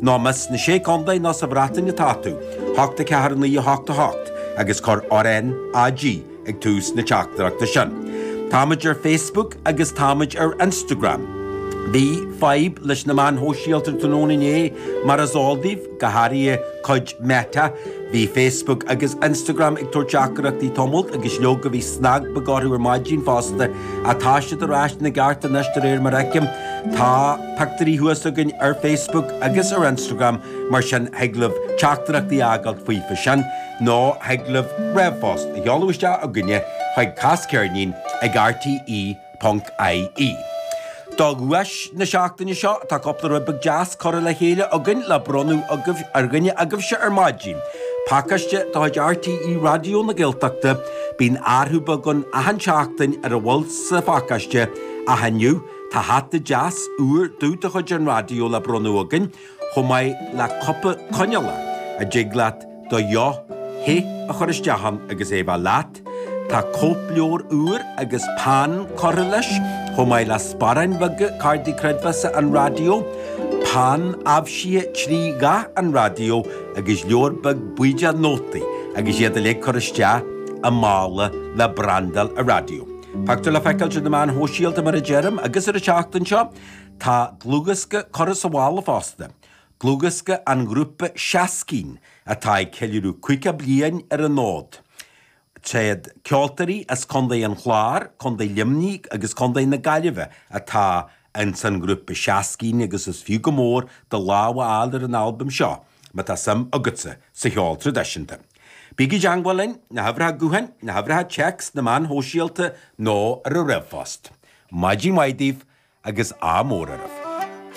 Nó más sna Sé Contae nó sa Bhreatain atá tú, hocht a ceathair a naoi a hocht a hocht agus cuir RnaG ag tús na teachtaireachta sin. Táimid ar Facebook agus táimid ar Instagram. Bhí fadhb leis na meáin shóisialta tráthnóna inné, mar is eol daoibh, go háirithe cuid Meta. Bhí Facebook agus Instagram ag tabhairt teachtaireachtaí tamalt agus leoga bhí snag beag orthu ar maidin fosta ach tá siad ar ais ina gceart anois de réir mar a fheicim. Tá. pictiúirí thuas againn ar Facebook agus ar Instagram mar sin thig libh teachtaireachtaí a fhágáilt faofa sin nó thig libh rphost a sheoladh isteach chugainne chuig casceirnín ag rte.ie. Do dhuais na seachtaine seo tá cúpla rud beag deas curtha le chéile againn le bronnadh ar dhuine agaibhse ar maidin. Pacáiste de chuid rte Raidió na Gaeltachta, bíonn athrú beag againn achan tseachtain ar a bhfuil sa phacáiste ach inniu, Tá hata deas úr dubh de chuid an raidió le bronnadh againn, chomh maith le cupa coinneála, a dtig leat do dheoch the a chur isteach ann agus é bheith leat. Tá cóipleabhar úr agus peann curtha leis, chomh maith le sparáin bheaga Cártaí Creidmheasa an Raidió, peann aibhsithe trí dhath an raidió agus leabhar beag buí de nótaí agus iad uilig curtha isteach i mála le brandáil an raidió. Pictiúr le feiceáilt ar na meáin shóisialta, mar a deirim, agus ar an tseachtain seo tá dlúthdhiosca curtha sa mhála fosta, dlúthdhiosca an ghrúpa Shaskeen atá ag ceiliúradh 50 bliain ar an fhód. Tréad ceoltóirí as Contae an Chláir, Contae Luimnigh agus Contae na Gaillimhe atá Ins an ngrúpa Shaskeen agus is fiú go mór do lámh a fháil ar an albam seo má tá suim agatsa sa cheol traidisiúnta. Bígí i dteangmháil linn, na huimhreacha gutháin, na huimhreacha téacs, na meáin shóisialta nó ar an ríomhphost. Maidin mhaith daoibh agus ádh mór oraibh.